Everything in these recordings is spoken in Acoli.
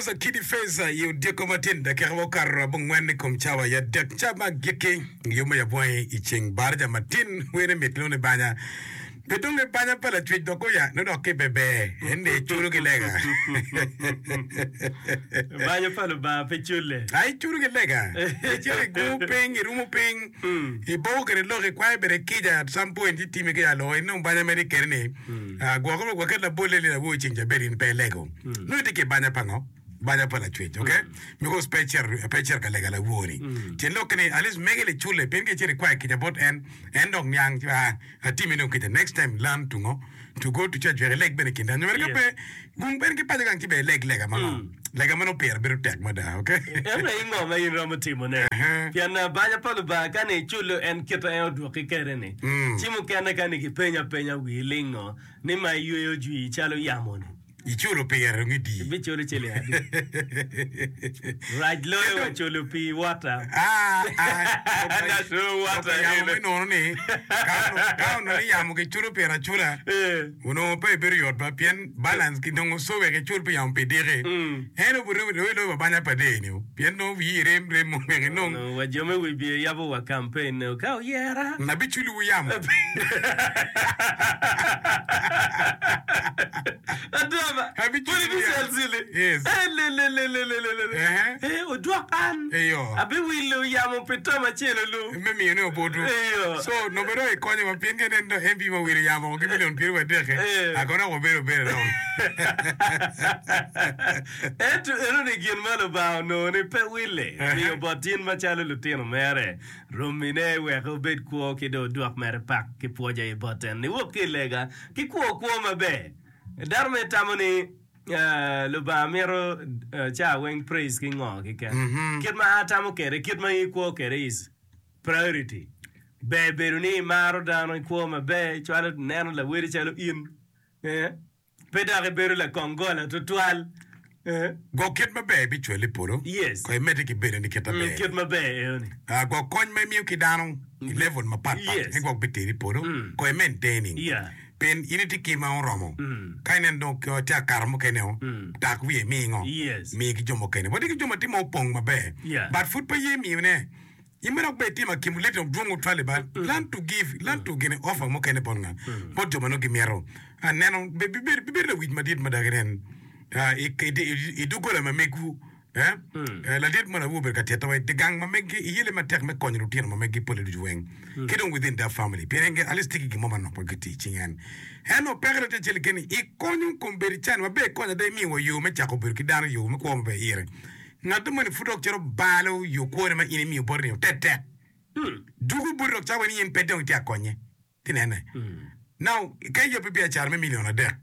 Rosa kidi Feza i odiko matin dakika ma okato abongwen i kom cawa i adek ca ma agikki. Yo ma yap wangi i ceng baraja matin wer ni mit nongo ni banya. Pe dong ni banya pa lacwec dok oya nongo dok ki bebe en ni iculo ki lega. Banya pa Lubanga pe culle. Ai iculo ki lega. Icito igungo piny, irumo piny, iboko kwede lok, ikwayo bene kica at some point itime ki alo in dong banya ma itye kwede ni ah, gwoko me gwok ket labolle ni awobi ceng ca bed in pe ilego. nongo itye ki banya pa ngo? Banya pa lacwec ok because pe icito pe icito ka lega lawor ni tyen lok ki ni at least mege ni cule pien ka icito ikwayo kica bot en en dok niang ci aa atimi dong kica next time learn to ngo to go to church wek ileg bene kinde nyo mere ka pe gung bene ki paco gang ci bene ileg lega ma ngo lega ma nongo pire bedo tek mada ok. Ento i ngo ma in iromo timo ne pien banya pa Lubanga ka ni icule en kit ma en odwoki kede ni ci mukene ka ni ki penyi apenya wii ling ngo ni ma iyweyo jwii calo yamo ni. Iculo pire me dii. Ibiculo ciling adi? Rac loyo wa culo pii wota. Lok pa yamo me nono ni ka onongo iyamo kiculo pire acula, onongo pe ebedo yot ba pien balance ki nongo so wek icul pi yamo pi diki. En obuto i loyo pa banya pa dee-ni pien nongo wiye rem rem mono wek enong. Onongo wa jo me wibye yabo wa campaign-ne ka oyera. N abiculowu yamo. Adama, pwod iducel cili? Elelelelelelele! Odwoko an, abiwilo yamo pi tam acel-lu. me miyo ne obutu so nongo dong ekonyo wa pien kene dong MP ma wilo yamo oko ki million pyeraryo adek-ki a kono dok wabedo abeda dong. Ento enoni gin ma Lubanga onongo ni pe wille miyo bot in macalo lutino mere, rommine wek obed kwo ki dong odwok mere pak ki pwoc aye bot en niwok ki i lega ki kwo kwo maber. Dano mere tamo ni. Lubanga mito caa weng praise ki ngo kiken? Kit ma a tamo kede, kit ma in i kwo kede is priority. Ber bedo ni imaro dano i kwo maber cwalo neno lawedi calo in pe dok i bedo lakong gola tutwal. Go kit maber ibi cwale i polo. Yes. Ko imedde ki bedo ni kit maber. Kit maber eo ni. Go kony ma imiyo ki dano i level mapat pat. Yes. Me gwok biteri i polo. Ko imentaining. Yeah. Pien in itye ki ma oromo. Ka ineno dong kio ci akato mukene o, tak wiye imi ngo? Mi ki jo mukene. Watye ki jo ma tye ma opong maber but pud pe ye miyo ne. In bene wek bed itye ma kim lit dok dwong otwali ba, learn to give, learn to gene offer mukene bot nga? Bot jo ma nongo gimito a neno. Bibedo lawic madit mada ki nen i doggola ma megwu. Ladit mo awobi obedo ka tito wa i gang ma megi i yelle matek me konyo lutino ma megi pole ducu weng ki dong within that family pien en at least tye ki gin mo manok ma gitye i cinge en. Ento peke dong tye acel keken-ni i konyo kombeddi can ma ber kony ada imiyo wa yo me cako bedo ki dano yo me kwo ma ber ire. Ngat moni pud dok cito balo yo kwone ma in imiyo boti-ni otek tek. Juku boti dok cawe ni in pe dong itye ka konye. Tinene, na ka iyobbi biacara me milion adek,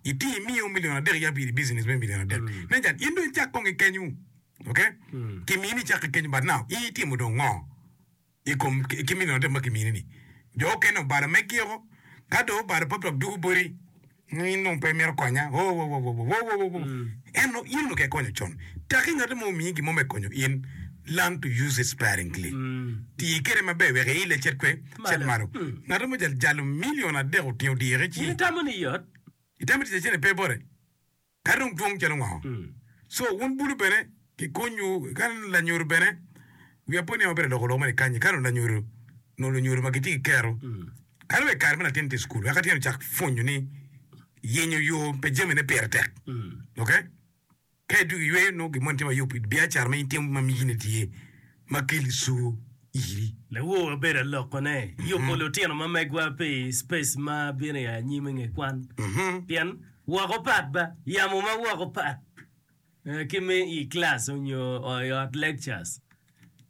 iti imiyo milion adek ya piri business me milion adek. Nen can, in dong icak kong ikenyu. Ok? Kimini ni icak ikenyu, but now in itimo dong ngo i kom ki milion adek ma kimini ni? Jo okene obalo megi-o, ka dong obalo pop dok dugu boti. Nongo in dong pe imito konya? Wowowowowowowowowoo! En nongo in onongo okia konyo con. Taki ngatte mo omiyi gin mo me konyo in. Learn to use it sparingly. Ti kwede maber wek iil acel kwe, acel malo. Ngatte mo jalo jalo milion adek otingo diro ki ci. In itamo ni yot? Itamo tic acel-li pe bote? Ka dong dwong calo ngo? So wun bulu bene ki kuny wu ka lanyodo bene wiya pe oniango bene aloko lok mene kanyi ka dong lanyodo nongo lunyodo ma gitye ki kero ka dong wek kare me latin tye icukul wek atyeno cak pwonyo ni yenyo yo pe jami ne pire tek ok ka idwogo iyweyo nongo gin moni tye mayop biacara ma in itimo ma migi ne tye ma keli cur iri. Lawo wabedo alokone yubo lutino ma megwa pi space ma bino ya anyim i nge kwan pien woko pat ba yamo ma woko pat ki me i class onyo i ot lectures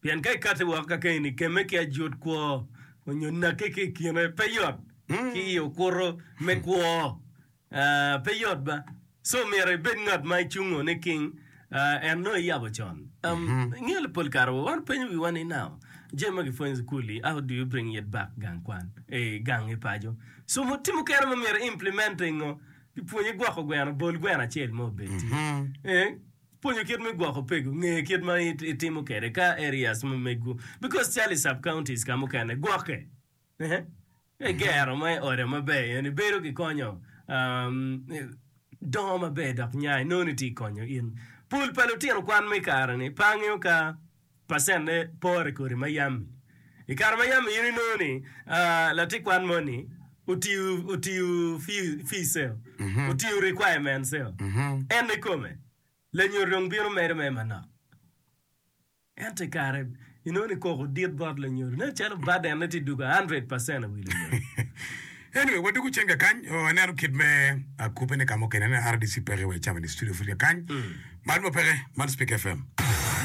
pien ka ikati woko ka keni keme ki ajut kwo onyo nake ki ikine pe yot ki i okuto me kwo. Pe yot ba. So myero ibed ngat ma icungo niking en nongo iyabo con. Um, ingeyo li pol kare wa wan penyo wiwa ni nao jami ma gipwonyo i sukul-li, how do you bring it back gang kwan, i gang i paco. So mo ti mukene ma myero i implement i ngo, gipwonyi gwoko gweno, bol gweno acel ma obed ti. Eh, pwonyo kit me gwoko pegu, nge kit ma it- itimo kede ka areas ma megu. Because cal i sub counties ka mukene gwoke. Eh, Me gero ma i ode maber eni bedo ki konyo dongo maber dok nya inongo ni tye ka konyo in. Pul pa lutino kwan ma i kare-ni pe angeyo ka pacenne pore kodi ma yam-mi. I kare ma yam-mi in inongo ni latin kwan moni otiyo fice, otiyo requirements-eo, en ikome lanyut dong bino medo mere manok. Ento i kare inongo ni koko dit bot lanyodo nen calo burden ne tye dugo a hundred percent i wi lanyodo. Anyway, wadwogo cen kakany. Oh, aneno kit me akupe ni ka mukene aneno RDC peke wa icamo ni studio pud kakany. Mar mo peke, man Speak FM.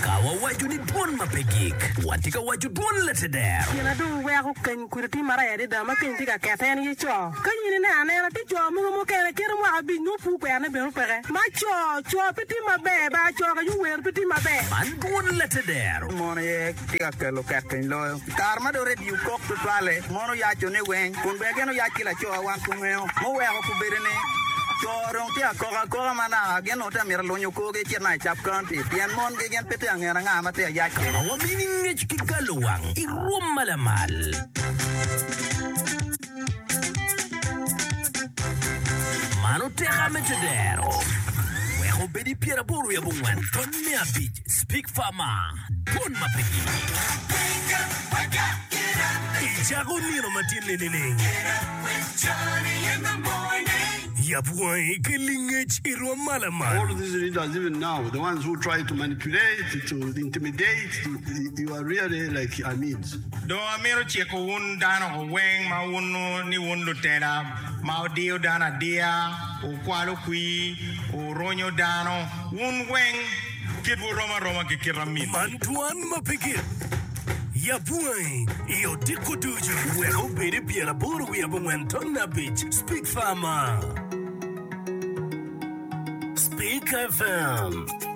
Ka wawaco ni dwon ma pe gik, watye ka waco dwon Leteder. Gin adong weko keny. Kodi tim maraya adada ma keny tye ka kette en aye co. Ka in ineno anena tye co mogo mukene kito mwaka abic nyo pur kwerne bene opeke ma co co pe tim maber bar co ka yowero pe tim maber. Man dwon latedero. Mon aye tye ka kelo kek piny loyo. I kare ma dong redio kok tutwalle, mon oyaco ne weng kun ber gin oyac ki lacowa wan ku ngeo muweko ku bedo ni co dong tye ka kok akoka ma naka gin dong te mito lunyo korgi ecit naka i Sub County pien mon gi gin pe tye angen anga ma tye ayac kwede. Ka wamining ngec ki galo wang. rwom ma lamal. Mano tek ame te dero. Wek obed i pyer aboro wiye abongwen tony me abic speak far ma dwon ma pe gi. Icako nino matin ni nining? Yap wangi ki lingec i rwom ma lamal. All of these leaders even now the ones who try to manipulate to intimidate you, you Dong amito ciko wun dano weng ma wuno ni wun lutela ma wudiyo dano adiya, wukwalo kwir, wurunyo dano, wun weng kitwu rom aroma ki kit amitwu. Man twan ma pe gik. Yab wangi i odiko ducu. Wek obed pyer aboro wiye abongwen ton abic Speak Farmer Speak FM.